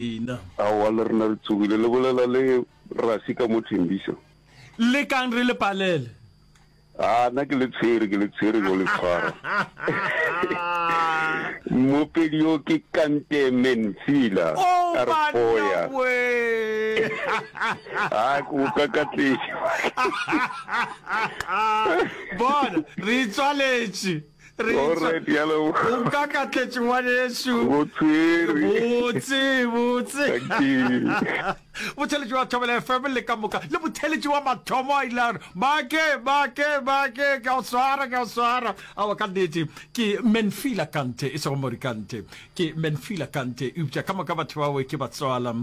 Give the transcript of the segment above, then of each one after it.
lena. Aowa, le rena re tsogile. Le bolela le Rasi ka mo Thembiso? Le kang re le palele. Aa, na ke le tshwere, ke le tshwere go le tshwara. Mmopedi yo ke kante Mensila, a Oh, re banna foya. we. Aa, ke go kakatletše. Bona, re itswaletše. Re O nka ka tletše ngwanešu. Go tshwere. Botse, botse. Thank you. Botheletši wa Thobela FM le ka moka. Le botheletši wa mathomo a ile Bake, bake, bake. Ka o swara, ka o swara. Awa ka nnete. Ke Menfila Kante, e sego Morikante. ke menfila kante eupša ka moka batho bawe ke batswala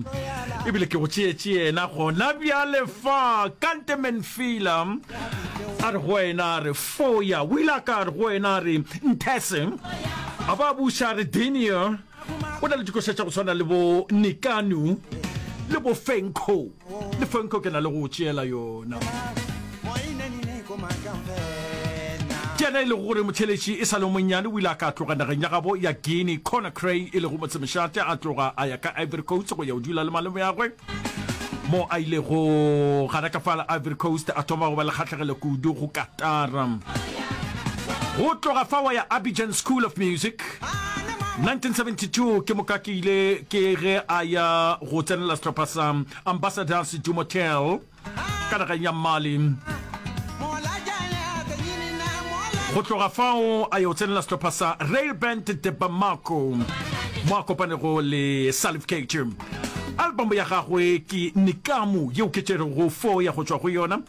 ebile ke go tšeetše yena gona bjale fa kante menfila a re go wena a re foya o ile a ka re go wena a re nthese a ba buša a re denia o na le dikoša tša go tshwana le bo nikanu le bo fenco le fonko ke na le go tšeela yona ke ena e lego gore motheletši e sa le monnyane o ile a ka tloga nageng ya gabo ya guinea cona cray e lego motsemešate a tloga a ya ka ivory coast go ya o dula le malome yagwe mo a ilego gana ka fala ivory coast a thoma go ba le kgatlhegelo kudu go katara go tloga fa wa ya abidjan school of music 1972 ke moka ke ile ke ge a ya go tsenela sehlopha sa ambassadors du motel ka nageng ya mali go tloga fao a yo tsenela sehlopha sa rail band de bamako mo a kopanego le salif keita album ya gagwe ke nikamo yeo ke tšerego fo ya go tšwa go yona